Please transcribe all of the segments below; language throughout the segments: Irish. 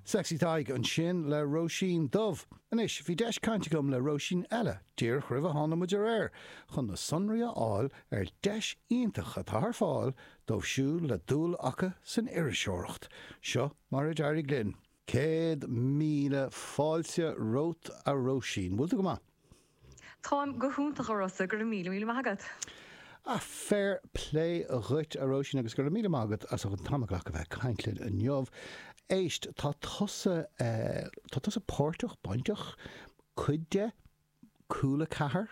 Sexy Tadhg ansin le Róisín Dubh. Anois, bhí deis caint agam le Róisín eile díreach roimh a tháinig muid ar aer chun na sonraí a fháil ar deis iontach atá ar fáil dóibh siúd le dúil acu san iriseoireacht. Seo mar a d'éirigh linn. Céad míle fáilte romhat a Róisín. Bhfuil tú go maith? Táim go hiontach, a Rossa, go raibh míle míle maith agat. Féar plé dhuit, a Róisín, agus go raibh míle maith agat as an t-am a ghlacadh bheith ag caint linn inniu. Éist, tá tusa, tá tusa páirteach, bainteach, cuid de, Cúla 4,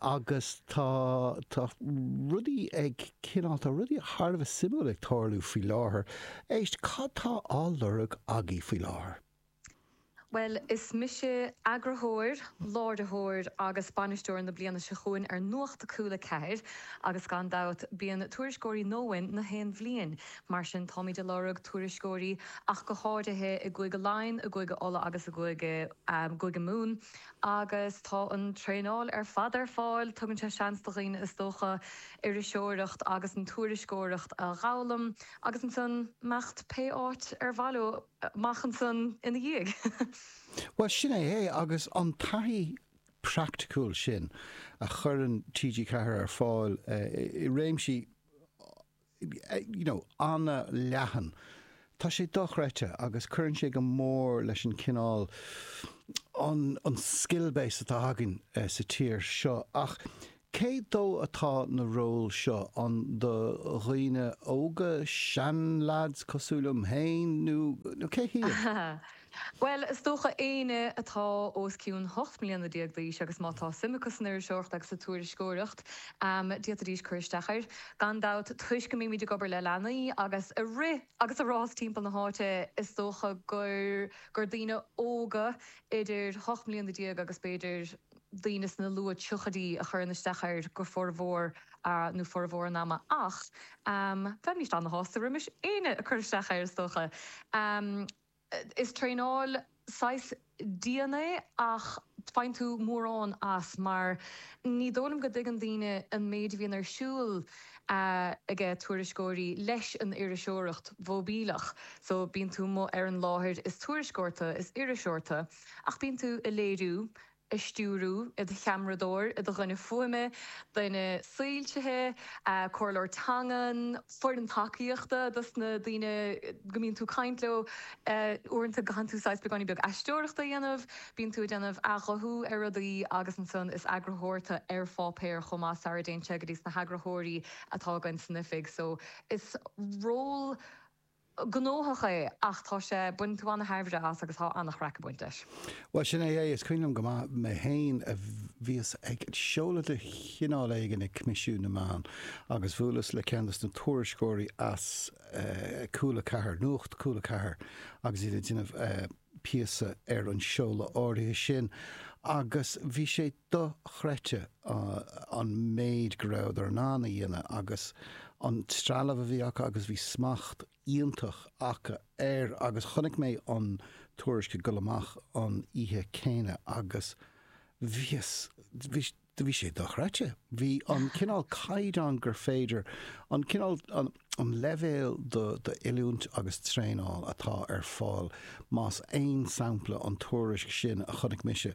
agus tá, tá rudaí ag cineál, tá rudaí thar a bheith suimiúil ag tarlú faoi láthair. Éist, cad tá á lorg agaibh faoi láthair? Bhuel, is mise eagarthóir, láiritheoir agus bainisteoir na bliana seo chugham ar Nuacht Cúla 4 agus gan dabht bíonn tuairisceoirí nua uainn gach aon bhliain, mar sin táimid ag lorg tuairisceoirí ach go háirithe i gCúige Laighean, i gCúige Uladh agus i gCúige Mumhan agus tá an traenáil ar fad ar fáil, tugann sé seans do dhaoine is dócha iriseoireacht agus an tuairisceoireacht a dh'fhoghlaim agus ansan imeacht pé áit ar mhaith leo. amach ansan ina dhiaidh. Bhuel, sin é é, agus an taithí praiticiúil sin a chuireann TG4 ar fáil i réimsí you know an-leathan, tá sé dochreidte agus cuireann sé go mór leis an chineál an skill base atá againn sa tír seo ach Cé dó atá na róil seo ann do dhaoine óga, seanleaids cosúil liom féin nó cé hiad? Bhuel, is dócha éinne atá os cionn ocht mbliana déag d'aois agus má tá suim acu san iriseoireacht agus sa tuairisceoireacht, d'fhéadfaidís cur isteach air. Gan dabht, toisc go mbímid ag obair le leanaí agus ag rith agus ag rás timpeall na háite, is dócha gur gur daoine óga idir ocht mbliana déag agus b'fhéidir, daoine sna luath triochaidí a chuireann isteach air go formhór nó formhór an ama ach bheimíst ana-shásta roimis éinne a chuirfeadh isteach air is dócha. Is traenáil saghas dian é ach faigheann tú mórán as mar ní dóigh liom go dtuigeann daoine an méid a bhíonn ar siúl aige tuairisceoirí leis an iriseoireacht mhóibíleach so bíonn tú amuigh ar an láthair is tuairisceoir tú, is iriseoir tú ach bíonn tú a' léiriú a' stiúradh, i do cheamaradóir, i do dhuine fuaime, duine soilsithe, comhairleoir teangan, foireann tacaíochta dos na daoine go mbíonn tú ag caint leo. Uaireanta caitheann tú saghas beagáinín beag aisteoireachta a dhéanamh, bíonn tú ag déanamh athghuthú ar rudaí agus ansan is eagarthóir tú ar pháipéar chomh maith sara dtéann sé go dtí sna heagarthóirí atá againn san oifig so is ról gnóthach é ach tá sé, baineann tú an-tairbhe as agus tá an-chraic ag baint leis. Bhuel, sin é é. Is cuimhin liom go maith mé féin a bhíos ag seoladh de chineál éigin ag Coimisiún na Meán agus bhuaileas le ceann de na tuairisceoirí as Cúla 4, Nuacht Cúla 4 agus iad ag déanamh a píosa ar an seoladh áirithe sin agus bhí sé dochreidte an méid go rabhadar in ann a dhéanamh agus an trealamh a bhí acu agus bhí smacht iontach acu air agus chonaic mé an tuairisc ag dul amach an oíche céanna agus bhíos, bhí, Do bhí sé dochreidte. Bhí an cineál caighdeán gur féidir, an cineál, an leibhéal d'oiliúint agus traenáil atá ar fáil, más aon sampla an tuairisc sin a chonaic mise,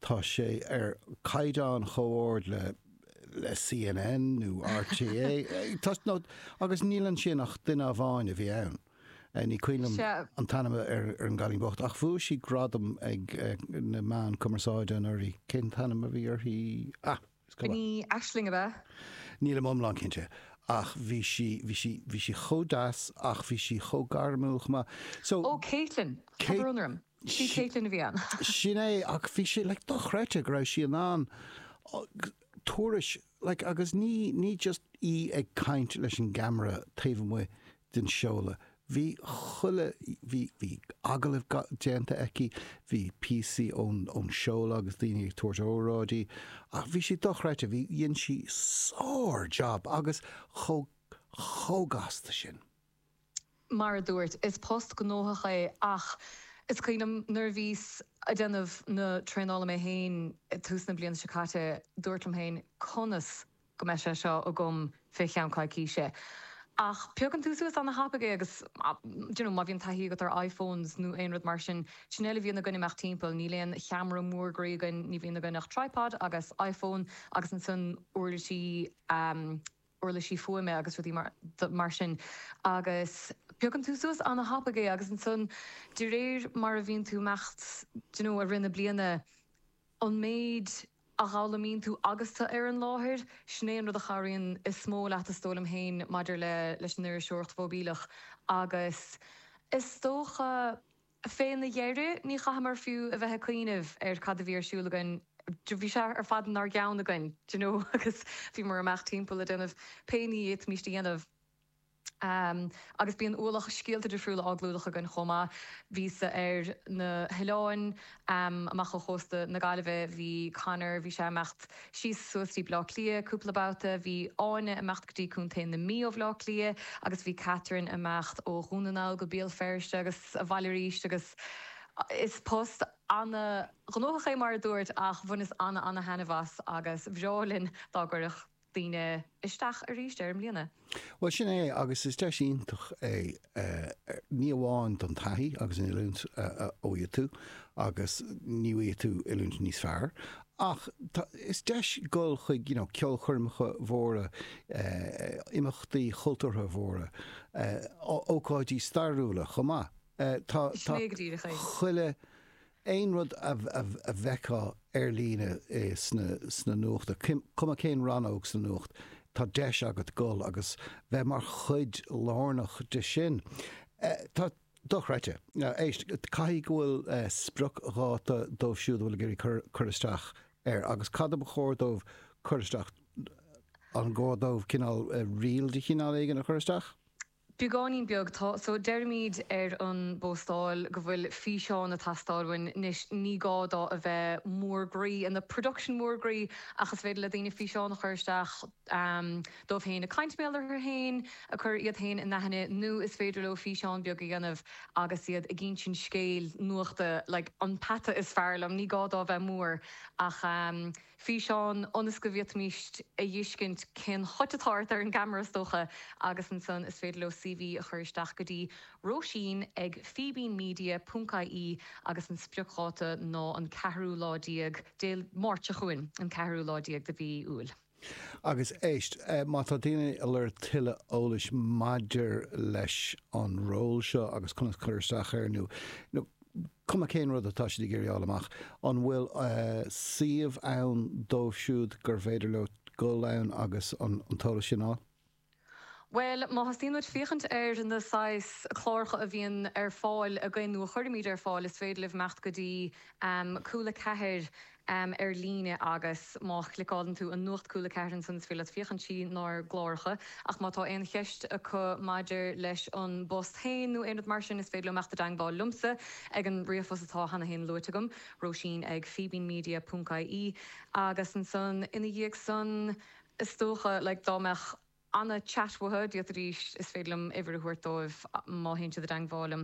tá sé ar chaighdeán chomh hard le, le CNN nó RTÉ, nó, agus níl ansin ach duine amháin a bhí ann. Ní cuimhin liom an t-ainm ar an gcailín bocht ach bhuaigh sí gradam ag na meáin cumarsáide anuraidh. Cén t-ainm a bhí uirthi? Ah! Is cuma. Ní Aisling ab ea? Nílim iomlán cinnte ach bhí sí, bhí sí, bhí sí chomh deas ach bhí sí chomh gairmiúil chomh maith. So. Ó, Caitlín! Tá brón orm. 'Sí Caitlín a bhí ann. Sin é ach bhí sé like dochreidte go raibh sí in ann tuairisc like agus ní, ní just í ag caint leis an gceamara taobh amuigh den seoladh. Bhí chuile, bhí, bhí agallaimh ga, déanta aici, bhí píosaí ón, ón seoladh agus daoine ag tabhairt óráidí ach bhí sé dochreidte, bhí, dhein sí sár-jab agus chomh, chomh gasta sin. Mar a dúirt, is post gnóthach é ach is cuimhin liom nuair a bhíos a' déanamh na traenála mé féin ag tús na bliana seo caite, dúrt liom féin conas, go mbeidh sé seo agam fé cheann coicíse ach piocann tú suas ana thapaidh é agus d'you know má bhíonn taithí agat ar iphones nó aon rud mar sin, sin a bhfuil a bhíonn againn ag imeacht timpeall, níl aon cheamara mór groí againn, ní bhíonn againn ach tripod agus iphone agus ansan uirlisí ehm uirlisí fuaime agus rudaí mar mar sin agus piocann tú suas ana thapaidh é agus ansan de réir mar a bhíonn tú ag imeacht d'you know i rith na bliana, an méid a dh'fhoghlaimíonn tú agus tú ar an láthair, sin é an rud a chabhraíonn is mó leat is dóigh liom féin maidir le, leis an iriseoireacht mhóibíleach agus is dócha fé na dheireadh ní chaitheamar fiú a bheith ag cuimhneamh ar cad a bhí ar siúl againn, bhí sé ar fad inár gceann againn, do you know, agus bhíomar ag imeacht timpeall ag déanamh pé ní ba mhiste a dhéanamh. agus bíonn ualach scéalta difriúla á gclúdach againn chomh maith. Bhíos-sa ar na hoileáin amach ó chósta na Gaillimhe, bhí Conor, bhí sé ag imeacht síos suas go dtí Baile Átha Cliath cúpla babhta, bhí Áine ag imeacht go dtí Contae na Mí ó Bhaile Átha Cliath agus bhí Catherine ag imeacht ó Dhún na nGall go Béal Feirste agus abhaile arís agus is post ana-ghnóthach é mar a dúrt ach bhaineas ana-ana-thaitneamh as agus ba bhreá linn dá gcuirfeadh daoine isteach arís air i mbliana. Bhuel, sin é, agus is deis iontach é, ní amháin don taithí agus an oiliúint a fhaigheann tú, agus ní fhaigheann tú oiliúint níos fearr, ach is deis dul chuig you know ceolchoirmeacha móra, imeachtaí cultúrtha móra, ócáidí stairiúla chomh maith. Sin é go díreach é. Tá chuile aon rud a bhfeicfeá ar líne sna nuachta, cuma cén rannóg sa nuacht, tá deis agat dul agus bheith mar chuid lárnach de sin. Tá. Dochreidte. Éist, caithfidh go bhfuil spriocdháta dóibh siúd a bhfuil ag iarraidh cur isteach air agus cad ba chóir dóibh cur isteach, an gá dóibh cineál reel de chineál éigin a chur isteach? Beagáinín beag tá so deirimíd ar an bpóstáil go bhfuil físeán ag teastáil uainn anois ní gá dó a bheith mór groí ina production mór groí ach is féidir le daoine físeán a chur isteach díobh féin ag caint, bhuel, orthu féin ag cur iad féin in aithne nó is féidir leo físeán beag a dhéanamh agus iad ag insint scéil nuachta like an peata is fearr liom ní gá dó a bheith mór ach físeán ionas go bhféadfaimist a dh'fheiscint cén chuma atá ort ar an gceamara is dócha agus ansan is féidir leo CV a chur isteach go dtí Róisín ag fíbínmedia ponc ie agus an spriocdháta ná an ceathrú lá déag Dé Máirt seo chugainn an ceathrú lá déag de mhí Iúil. Agus éist, má tá daoine ag lorg tuilleadh eolais maidir leis an ról seo agus conas cur isteach air nó, nó, cuma cén rud atá siad ag iarraidh a fháil amach, an bhfuil suíomh ann dóibh siúd gur féidir leo dul ann agus an t-eolas sin a fháil? Bhuel, má thosaíonn muid ag féachaint ar na saghas cláracha a bhíonn ar fáil againn nó a chuirimid ar fáil, is féidir libh imeacht go dtí cúla 4 am ar líne agus má chliceálann tú ar Nuacht Cúla 4 ansan is féidir leat féachaint trí nár gcláracha ach má tá aon cheist acu maidir leis an bpost féin nó aon rud mar sin is féidir leo imeacht i dteangmháil liomsa ag an ríomhphost atá cheana féin luaite agam, Róisín ag fíbínmedia ponc ie, agus ansan ina dhiaidh san is dócha like dá mbeadh. Anna, Chat with her, díot arís, is féidir liom uimhir a thabhairt dóibh má théann siad i dteangmháil liom.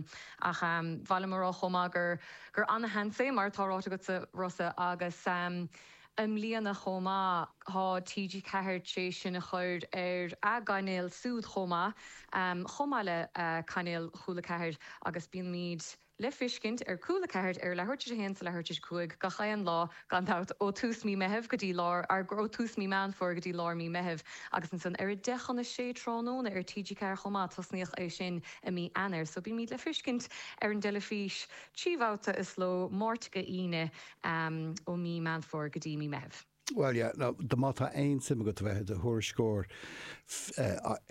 Ach ehm, ba mhaith liom a rá chomh maith gur, gur ana-sheans é, mar atá ráite agatsa Rossa, agus ehm, i mbliana chomh maith, tá TG Ceathair tar éis sinn a chur ar a' gcainéal súd chomh maith, ehm, chomh maith le eh, cainéal Chúla Ceathair agus bíonn muid, le feiscint ar Cúla 4 ar leathuair tar éis a 1 is ar leathuair tar éis 5 gach aon lá gan dabht ó tús mí Meitheamh go dtí lár, á, ó tús mí Meán Fómhair go dtí lár mí Meitheamh agus ansan ar a deich chun a sé tráthnóna ar TG4 chomh maith tosnaíodh é sin i mí Eanáir so bímíd le feiscint ar an dteilifís trí bhabhta sa ló, Máirt go Aoine ó mí Meán Fómhair go dtí mí Meitheamh. Bhuel, yeah, no, dá, má tá aon suim agat a bheith i do thuairisceoir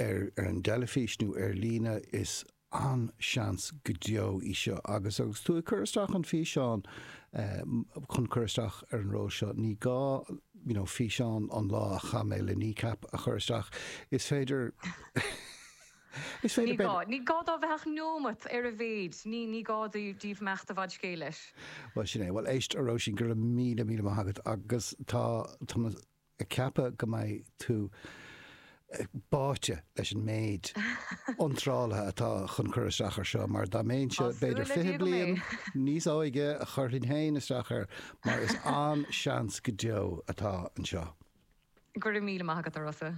ar an dteilifís nó ar líne is. an-seans go deo í seo agus agus tú ag cur isteach an físeán chun cur isteach ar an ról seo ní gá you know físeán an lá a chaith mé le Kneecap a chur isteach is féidir is féidir leat. Ní gá. Ní gá dó a bheith ach neomat ar a mhéid. Ní ní gá daoibh imeacht i bhfad scéil leis. Bhuel sin é. Bhuel éist a Róisín go raibh míle míle maith agat agus tá tá ag ceapadh go mbeidh tú báite leis an méid iontrálaithe atá chun cur isteach ar seo. Tá súil le Dia go mbeidh. Mar dá mbeinnse b'fhéidir 20 bliain níos óige, chuirfinn féin isteach air, mar is an-seans go deo atá anseo. Go raibh míle maith agat, a Rossa.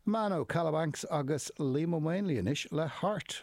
Mano, Kalawanks agus Liam Ó Maonlaí anois le Heart.